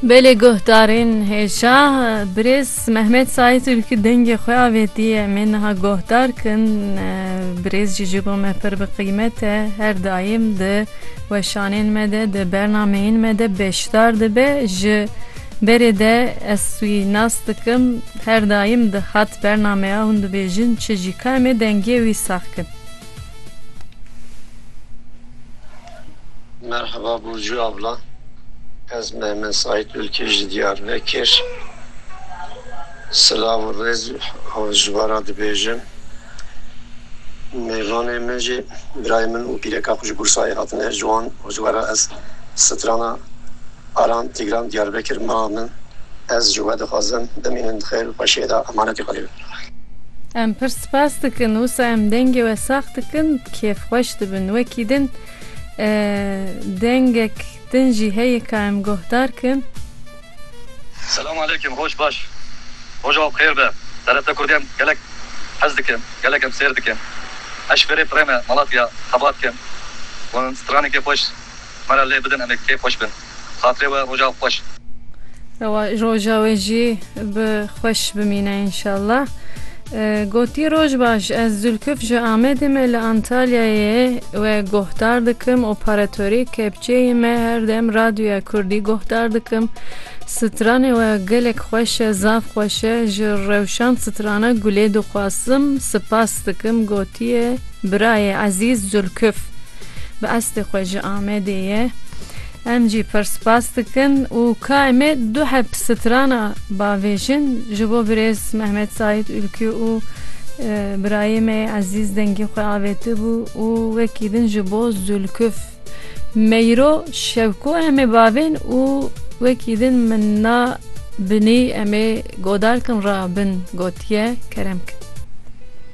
Belê guhdarên hêja birêz Mehmet Saîd Ülkü dengê xwe avêtiye em ê niha guhdar kin birêz jî ji bo me pir bi qîmet e her daîm di weşanên me de di bernameyên me de beşdar dibe ji berê de ez wî nas dikim her daîm dihat bernameya hûn dibêjin çi jî ka em ê dengê wî sax kin. Merheba Burcu abla. Ez Mehmet Said Ülkü ji Diyarbekir. Silav û rêz ji we re dibêjim. Mêvanê min jî birayê min û pîreka xwe ji Bursayê hatine. Ji wan û ji we re ez strana Aram Tîgran Diyarbekir Mama min ez ji we dixwazim bimînin di xêr û xweşiyê de emanetê xwe lê bim. Em pir spas dikin wisa em dengê we sax dikin kêfxweş dibin wekî din dengek din jî heye ka em guhdar kin. Selam aleyküm roj baş roja we bi xêr be TRT kurdî em gelek hez dikin gelek em sêr dikin eşverê pirê me malatya xebat kin wan stranekê xweş. Me re lê bidin em ê pêxweş bin. Xatirê we roja xweş. Ewa roja we jî bi xweş bimîne înşallah. Gotiye roj baş ez Zülküf ji Amedê me li Antalyayê we guhdar dikim operatorê kepçeyê me her dem radyoya kurdî guhdar dikim stranê we gelek xweş e zaf xweş e ji rewşan strana gulê dixwazim sipas dikim gotiye birayê ezîz Zülküf. Bi estê xwe ji Amedê ye. Em jî pir spas dikin û ka em ê du heb strana bavêjin ji bo birêz Mehmet Saîd Ülkü û birayê me yê ezîz dengê xwe avêtibû û wekî din ji bo Zülküf Meyro Şevko em ê bavên û wekî din min na binî em ê godarkin ra bin gotiye kerem kin.